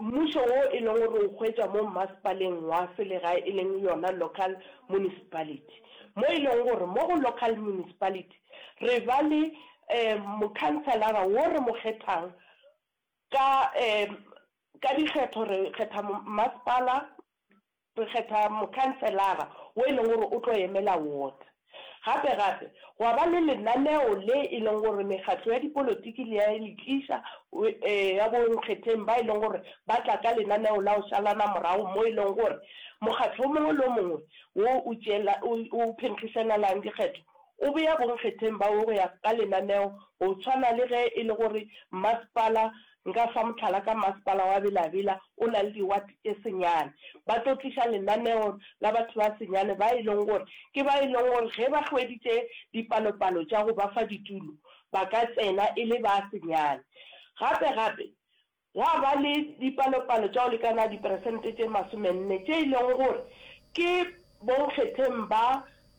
Mmušo wo e leng gore o hwetša mo mmasepaleng wa selegae e leng yona local municipality. Mo e leng gore mo go local municipality re ba le mokhanselara wo re mo kgethang ka ka dikgetho re kgetha mmasepala, Re kgetha mokhanselara wo e leng gore o tlo emela ward. Gape gape gwa ba le lenaneo le e leng gore mekgatlo ya dipolotiki le ya le tliša ya bo nkgetheng ba e leng gore ba tla ka lenaneo la go šalana morago mo e leng gore mokgatlo o mongwe le o mongwe wo o tšeela o phenkgišanalang dikgetho o beya bo nkgetheng ba wo go ya ka lenaneo go tshwana le ge e le gore mmasepala Nka fa mohlala ka Masepala wa Bela-Bela, o na le diwate tše senyane. Ba tlo tliša lenaneo la batho ba senyane ba e leng gore ke ba e leng gore ge ba hweditše dipalopalo tša go ba fa ditulo, ba ka tsena e le ba senyane. Gape-gape, gwa ba le dipalopalo tša go lekana diperesente tše masomenne tše e leng gore ke bonkgetheng ba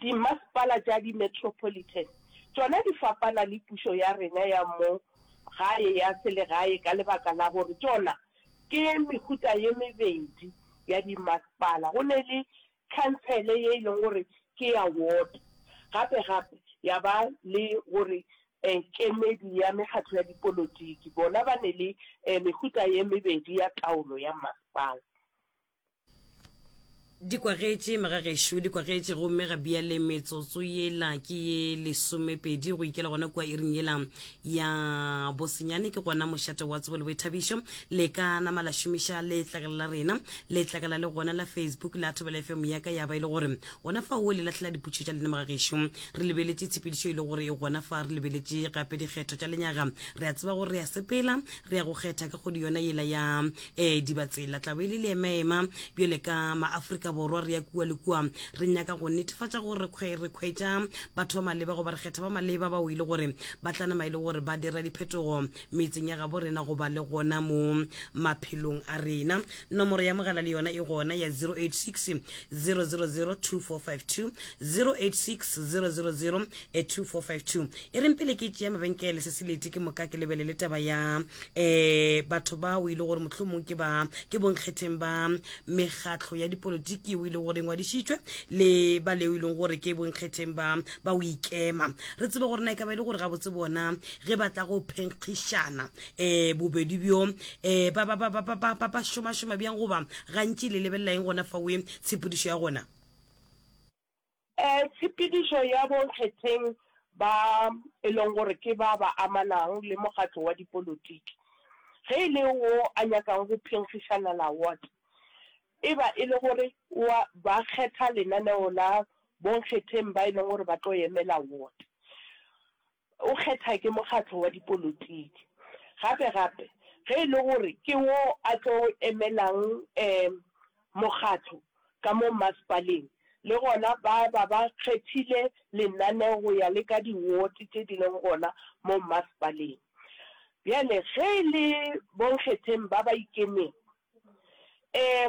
Dimmasepala tša di-metropolitan tšona di fapana le pušo ya rena ya mo gae ya selegae ka lebaka la gore tšona ke mehuta ye mebedi ya dimmasepala. Go ne le khantsele ye e leng gore ke ya ward gape gape ya ba le gore kemedi ya mekgatlo ya dipolotiki bona ba ne le mehuta ye mebedi ya taolo ya mmasepala. Di kwagetše, maga gešo, di kwagetše, gomme ga bjale metsotso yela ke ye lesomepedi go ikela gona kua iring yela ya bosenyane. Ke gona mošate wa tsebo le boithabišo le ka nama la šomiša letlakala la rena. Letlakala le gona la Facebook la Thobela FM ya ka ya ba e le gore gona fa o le lahlela dipotšišo tša lena maga gešo. Re lebeletše tshepedišo e le gore e gona fa, re lebeletše gape dikgetho tša lenyaga. Re a tseba gore re a sepela, re ya go kgetha ka kgwedi yona yela ya e dibatsela tla be le le emaema bjale ka maafrika borwa re ya kua le kua re nyaka go netefatša gore re kgwetša batho ba maleba goba re kgetha ba maleba bao e le gore ba tlanama e le gore ba dira diphetogo metseng ya gabo rena goba le gona mo maphelong a rena nomoro ya mogala le yona e gona ya 086 000 2452 086 000 e 2452 e reng pele ke tšea mabenkele se se leti ke moka ke lebelele taba ya um batho ba o ile gore mohlomong ke ba ke bonkgetheng ba mekgatlho ya dipolotiki o ile gore ngwadišitšwe le ba le o ileng gore ke bonkgetheng ba ba o ikema re tsebe gore na e ka ba e le gore gabotse bona ge ba tla go phenkgišana um bobedi bjo um ba šomašoma bjang goba gantši le lebelelang gona fa oe tshepedišo ya gona Tshepedišo ya bonkgetheng ba e leng gore ke ba ba amanang le mokgatlo wa dipolotiki, ge e le wo a nyakang go phenkgišanela ward, e ba e le gore wa ba kgetha lenaneo la bonkgetheng ba e leng gore ba tlo emela ward. O kgetha ke mokgatlo wa dipolotiki. Gape-gape, ge e le gore ke wo a tlo emelang mokgatlo ka mo mmasepaleng, le gona ba ba ba kgethile lenaneo go ya le ka diwote tše di leng gona mo mmasepaleng. Bjale ge e le bonkgetheng ba ba ikemego, Ee,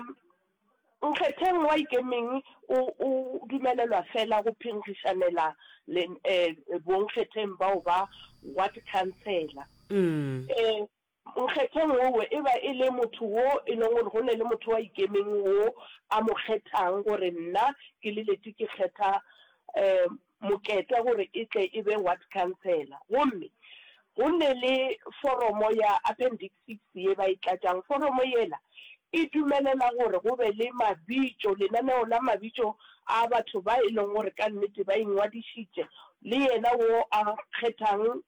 Nkgetheng wa Ikemeng o, o dumelelwa feela go phenkgišanela le, ee, bonkgetheng bao ba Ward Councillor. Ee, Nkgetheng owe e ba e le motho wo e leng gore go ne le motho wa Ikemeng wo a mo kgethang gore nna ke le Leti ke kgetha, ee, Moketwa gore e tle e be Ward Councillor. Gomme go ne le foromo ya Appendix 6 ye ba e tlatšang. Foromo yela e dumelela gore go be le mabitšo, lenaneo la mabitšo a batho ba e lego gore ka nnete ba ingwadišitše, le yena wo a kgethang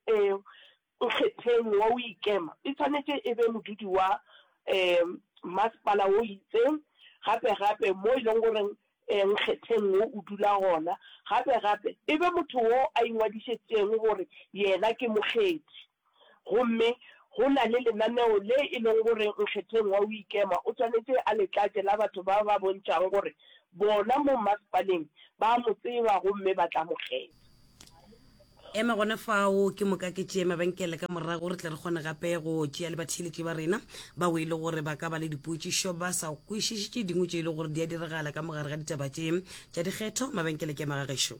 nkgetheng wa o ikema. E swanetše e be modudi wa masepala o itseng, gape gape mo e lego gore nkgetheng wo o dula gona, gape gape e be motho wo a ingwadišetšeng gore yena ke mokgethi. Gomme go na le lenaneo le e lego gore nkgetheng wa o ikema o swanetše a le tlatše la batho ba ba bontšhago gore bona mo mmasepaleng ba a mo tseba gomme ba tla mo kgetha. Ema gona fao, ke moka ke tšee mabenkele ka morago, re tle re kgone gape go tšea le batheeletši ba rena bao e lego gore ba ka ba le dipotšišo ba sa kwešiše tše dingwe tše e lego gore di a diragala ka mo gare ga ditaba tše tša dikgetho. Mabenkele ke a ma ga gešo.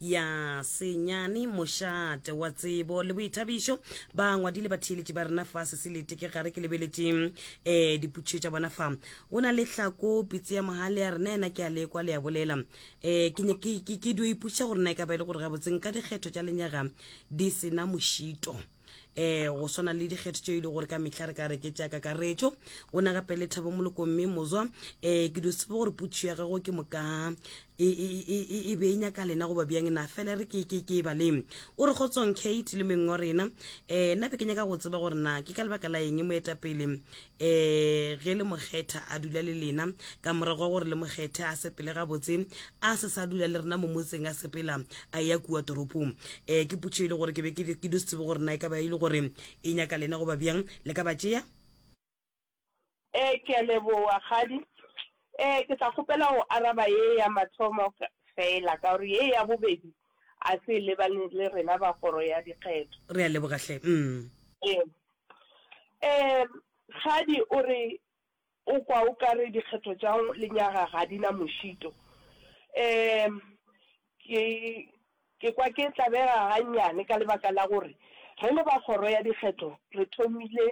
ya senyane mošate wa tsebo le boithabišo ba ngwadile ba theeletše ba rena fa seselete ke gare ke lebeletše um eh, diputšho tša bona fa go na le tlhako pitse ya mogale ya rena ena ke a lekwa le ya bolela um ke dio ipotšiša gore na e ka ba e le gore gabotseng ka dikgetho tša lenyaga di sena mošito um go swana le dikgetho tšeo e le gore ka mehla re ka reketša kakaretšo o na gape le thabo moloko mme mozwa um ke dio tsebe gore putšo ya gago ke moka e, e, e, e be e nyaka lena goba bjang na fela re ke ke ke e baleng o re kgotsong kate le meng wa rena um nna be ke nyaka go tseba gore na ke ka lebaka la eng moetapele um e ge le mokgetha a dula le lena ka morago wa gore le mokgethe a sepele gabotse a se sa dula le rena mo motseng a sepela a ya kua toropong um ke putšo e le gore ke be ke do se tsebe gore na e ka ba e le gore e nyaka lena goba bjang le ka ba tšea um ke a leboa kgadi um ke tla kgopela go araba ye ya mathomo fela ka gore ye ya bobedi a se lebane le rena ba kgoro ya dikgetho re a lebogahle um Um Kgadi o re o kwa o ka re dikgetho tša lenyaga ga di na mošito. Um Ke ke kwa ke tlabega gannyane ka lebaka la gore re le ba kgoro ya dikgetho re thomile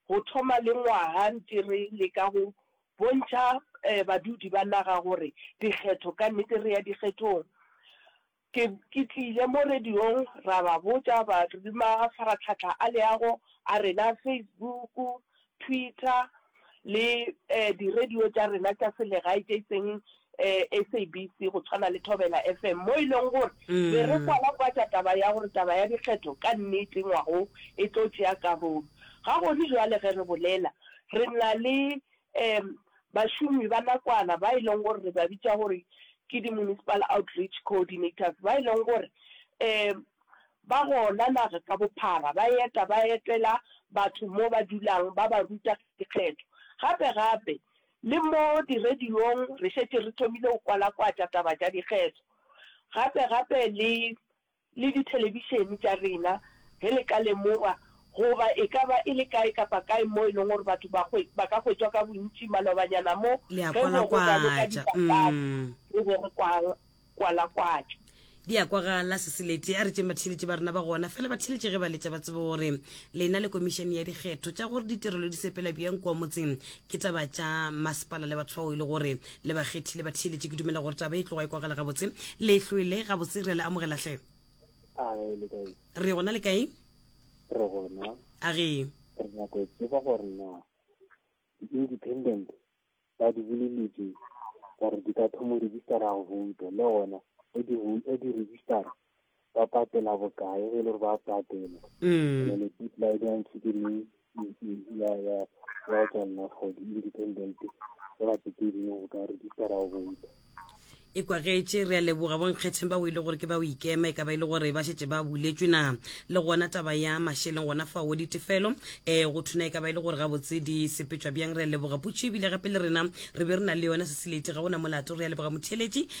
go thoma le ngwaga ntše re leka go bontšha badudi ba naga gore dikgetho ka nnete re ya dikgethong. Ke, ke tlile mo radiong, ra ba botša, ba re mafaratlhatlha a leago a rena, Facebook, Twitter, le di-radio tša rena tša selegae tše e seng SABC, go tshwana le Thobela FM, mo e leng gore be re kwala-kwatša taba ya gore taba ya dikgetho ka nnete ngwaga wo e tlo tšea karolo. Ga gone bjale ge re bolela, re na le Ee, bašomi ba nakwana ba e leng gore re ba bitša gore ke di-municipal outreach coordinators ba e leng gore um ba gona naga ka bophara, ba eta ba etela batho mo ba dulang ba ba ruta dikgetho. Gape-gape le mo di-radio-ng re šetše re thomile go kwalakwatša taba tša dikgetho, gape-gape le le dithelebišene tša rena ge le ka lemogwa, goba e ka ba e le kae kapa kae mo e leng gore batho ba hwe, ba ka hwetšwa ka bontši malobanyana mo, Le a ge go be go raloka kwalakwatša. dipapadi, Mm. re be re kwa, kwalakwatša. Di a kwagala, Seseleti. A re tšeng batheeletši ba rena ba gona. Fela batheeletši ge ba letša ba tsebe gore lena le Komišene ya Dikgetho tša gore ditirelo di sepela bjang kua motseng, Ke taba tša masepala le batho bao e le gore le ba kgethile ba theeletše. Ke dumela gore taba e tloga e kwagala gabotse. Le hlwele gabotse, re a le amogela hle. A e le kae? Re gona le kae? Re gona. A ge? Re nyaka go tseba gore na independent ba di boleletse gore di ka thoma registera go vouta le gona e di e di registera ba patela bokae ge e le gore ba patela mm. and ke tla e dang ke le ya ya ya tswa nna for the independent ba ba ke di go ka re di tsara go botsa e kwagetše re a leboga bonkgetheng ba o ile gore ke ba o ikema e ka ba e le gore ba šetse ba buletswe na le gona taba ya mašeleng gona fa o ditefelo um go thuna e ka ba e le gore gabotse di sepetšwa bjang re a leboga putšo ebile gape le rena re be re na le yona seselete ga ona molato re a leboga motheeletši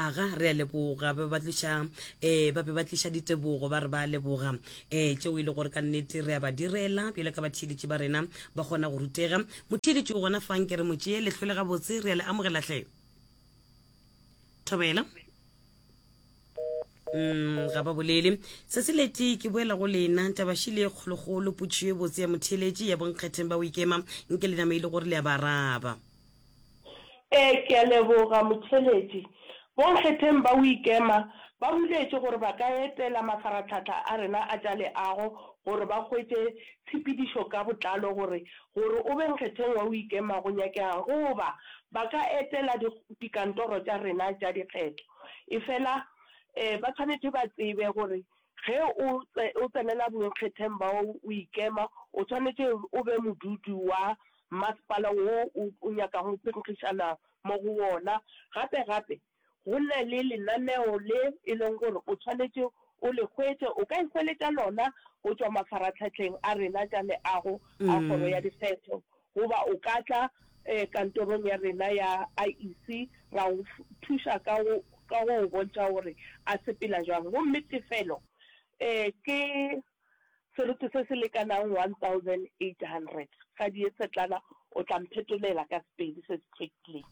Aga, re a leboga. Ba be ba tliša, ee, ba be ba tliša ditebogo, ba re ba a leboga, ee, tšeo e le gore ka nnete re a ba direla, bjalo ka batheeletši ba rena ba kgona go rutega. Motheeletši o gona fang, ke re mo tšee le hlwele gabotse. Re a le amogela hle. Thobela. Umm, ga ba bolele. Tsatsi le tee ke boela go lena, tabašile ye kgolokgolo, potšišo e botse ya motheeletši, ya bonkgetheng ba Oikema, nke le nama e le gore le a ba araba. Ee, ke a leboga, Motšheletši. Bonkgetheng ba Uikema ba buletše gore ba ka etela mafaratlhahla a rena a tša leago gore ba hwetše tshepedišo ka botlalo gore gore o be Nkgetheng wa Uikema go nyakega'ng goba ba ka etela dikantoro tša rena tša dikgetho. Efela ba swanetše ba tsebe gore ge o o tsenela Bonkgetheng ba Uikema o swanetše o be modudi wa Masepala wo o o nyakago go phenkgišana mo go wona. Gape gape go na le lenaneo le e leng gore o tshwanetše o le hwetše. O ka ihweletša lona go tšwa mafaratlhatlheng a rena tša leago a Kgoro ya Dikgetho goba o ka tla kantorong ya rena ya IEC ra go thuša ka go ka go o bontšha gore a sepela bjang. Gomme tefelo ke seroto se se lekanago 1,800, Gadiesetlana o tla mphetolela ka Sepedi se se hlwekilego.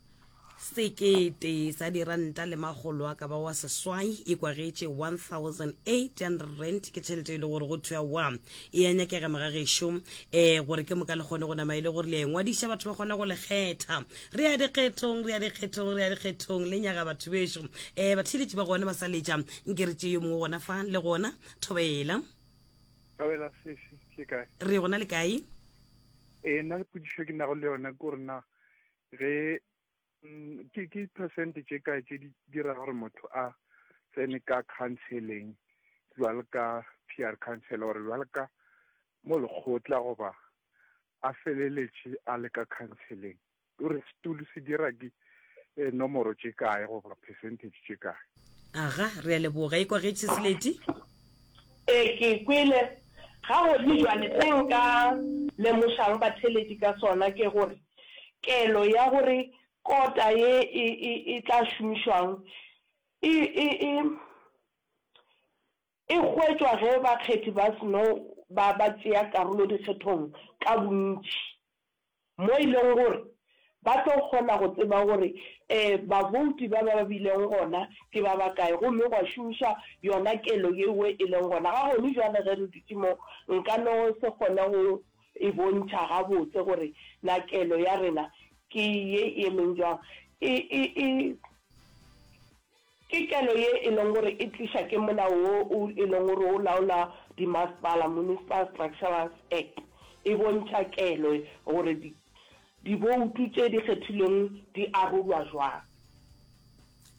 Sekete sa diranta le makgolo a ka ba wa seswai e kwagetše 1,800 rand. Ke tšhelete e le gore go thwa wa e a nyakega mogagešo, um gore ke moka le kgone go nama e le gore le a e ngwadiša batho ba kgone go le kgetha. Re ya dikgethong, re ya dikgethong, re ya dikgethong, le nyaga batho bešo. Um batheeletši ba gona ba sa letša, nke re tšee yo mongwe gona fa le gona. Thobela. Thobela sesi, ke kae? Re gona le kae? E na le pudišo ke nago le yona ko rena ge mm, ke ke percent tše kae tše di dira gore motho a tsene ka counseling jwalo ka PR counselor gore jwalo ka mo lekgotla goba a feleletše a le ka counseling. O re setulu se dira di eh, nomoro tše kae goba percentage tše kae Aga, re a leboga. Ekwa ge Chisleti. E ke kwele. Ga gomme jwale se nka lemošang batheledi ka sona ke gore kelo ya gore kota ye e, e, e tla šomišwang e, e, e, E hwetšwa ge bakgethi ba seno ba ba tšea karolo dikgethong ka bontši, mo e lego gore ba tlo kgona go tseba gore ee babouti ba ba bilego gona ke ba bakae gomme gwa šomišwa yona kelo yeo e lego gona. Ga gone bjale ge re dutše mo, nka no se kgone go e bontšha gabotse gore na kelo ya rena ke ye e emeng bjang. E, e, e. Ke kelo ye e lego gore e tliša ke molao wo o e lego gore o laola dimasepala, Municipal Structures Act, e bontšha kelo gore di diboutu tše di kgethilweng di arolwa jwang.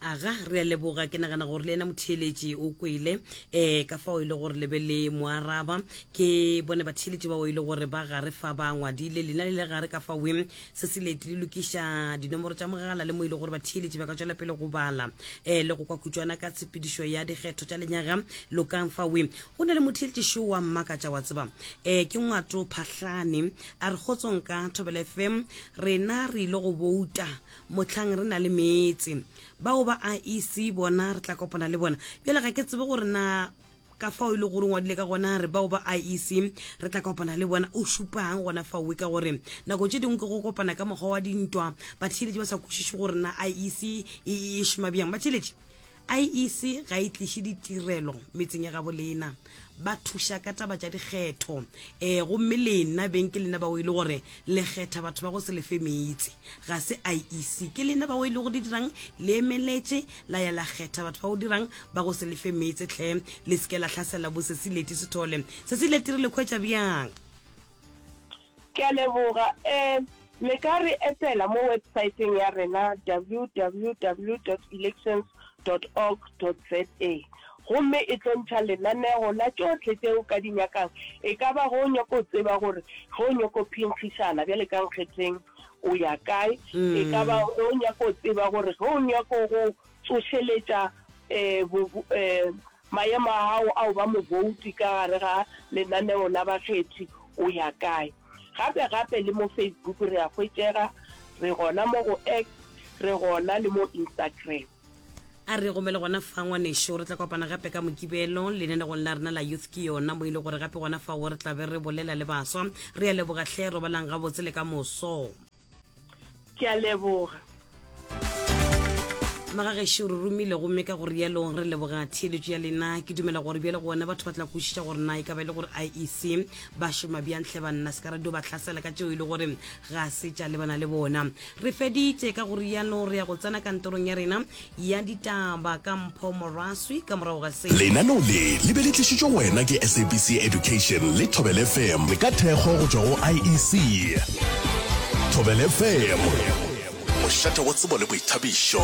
Aga, re a leboga. Ke nagana gore le yena motheeletši o kwele um ka fao e le gore le be le mo araba. Ke bone batheeletši bao e le gore ba gare fa ba ngwadile, lena le le gare ka faweng. se se leti le lokiša dinomoro tša mogala le mo e le gore batheeletši ba ka tšwela pele go bala um le go kwa khutšwana ka tshepedišo ya dikgetho tša lenyaga lokang fawe go na le motheeletši šo wa mmakatša wa tseba um ke ngwato phahlane a re kgotsong ka thobele fm rena re ile go bouta motlhang re na le meetse bao ba a ec bona re tla kopana le bona bjale ga ke tsebe gore na Ka fao e lego gore o ngwadile ka gona, re bao ba IEC re tla kopana le bona. O šupang gona faowe ka gore nako tše dingwe ke go kopana ka mokgwa wa dintwa, batheeletši ba sa kwešiše gore na IEC e e šoma bjang. Batheeletši, IEC ga e tliše ditirelo metseng ya gabo lena. Ba thuša ka taba tša dikgetho, um gomme lena beng ke lena bao e le gore le kgetha batho ba go se lefe meetse. Ga se IEC. Ke lena bao e lego le dirang le emeletše. la ya la kgetha batho ba go dirang ba go se lefe meetse tlhe le seke la tlhasela bo sesi leti sethole sesi leti re le khwetša bjang ke a leboga um le ka re etela mo websaeteng ya rena www elections org za gomme e tlo ntšha lenanego la tšotlhe tše o ka di nyakang e ka ba go nyako tseba gore go nyako phinkgišana bjale ka nkgetheng o ya kae e ka ba ge o nyaka o tseba gore ge o nyaka go tsošeletša um maemo a gago a o ba mobouti ka gare ga lenaneo la bakgethi o ya kae gape gape le mo facebook re a hwetšega re gona mo go x re gona le mo instagram a re gomele gona fa ngwaneso re tla kopana gape ka mokibelo lenanegong la rena la youth ke yona mo ile gore gape gona fao re tlabe re bolela le baswa re a leboga tlhe robalang gabotse le ka moso ke a leboga magagešo re romile gomme ka gore yalo re leboga theeletso ya lena ke dumela gore bjale gona batho ba tla kwešiša gore na e ka ba e le gore iec ba šoma bjantle banna se ka radio ba tlhasela ka tšeo e le gore ga se tša lebana le bona Re feditše, ka go rialo re ya go tsena kantorong ya rena ya ditaba ka mpho moraswi ka morago ga se. Lenaneo le le be le tlišitšwe go wena ke SABC Education le Thobela FM ka thekgo go tšwa go IEC. Thobela FM, mošate wa tsebo le boithabišo.